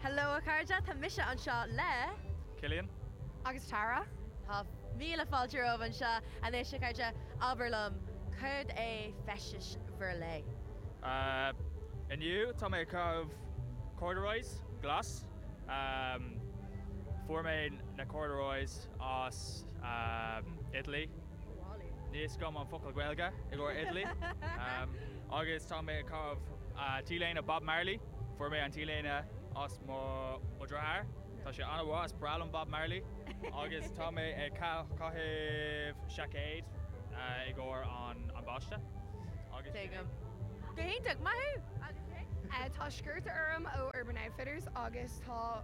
Hello a chairde, tá mise anseo le. Cillian. Agus Tara. Tá míle fáilte romhaibh anseo. Anois, a chairde, abair liom, céard é feisteas bhur lae? Inniu, tá mé ag caitheamh corduroys glas. Fuair mé na corduroys as Italy. Níl a fhios agam an focal Gaeilge i gcomhair Italy. Agus tá mé ag caitheamh T-léine Bob Marley. Fuair mé an T-léine as mo dheartháir. Tá sé an-mhaith, is breá liom Bob Marley. Agus tá mé ag caitheamh seaicéad i gcomhair an bháiste. Agus sin é. Go hiontach, maith thú! Agus é? Tá sciorta orm ó Urban Outfitters agus tá.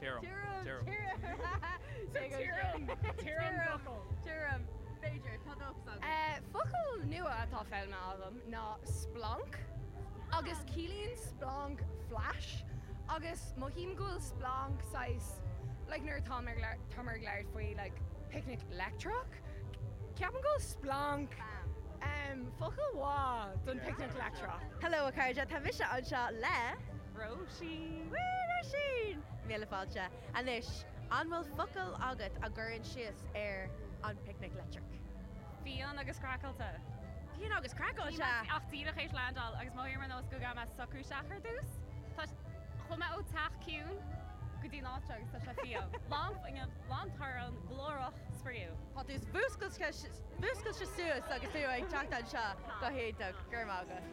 Tirim. Tirim. Tirim. B'fhéidir. Tá dóchas agam. Focal nua atá foghlamtha agam ná splanc agus ciallaíonn splanc flash agus mothaím go bhfuil splanc saghas like an uair atá mé tá mé ag labhairt faoi like picnic leictreach ceapaim go bhfuil splanc focal mhaith don picnic leictreach. Hello a chairde, tá mise anseo le. Róisín! Woo Róisín! Míle fáilte. Anois, an bhfuil focal agat a chuireann síos ar an Picnic Leictreach? Fiáin agus craiceáilte. Fiáin agus craiceáilte! Níl mé ach díreach tar éis landáil agus mo shaol ar nós go gabhadh mé socrú isteach ar dtús. Tá sé. Chuaigh mé ó teach ciúin go dtí an áit seo agus tá sé fiáin. Lán fuinnimh, lán torann, glórach, spraíúil. Tá tú fuascailte suas agus tú ag teacht anseo go hiontach. Go raibh maith agat.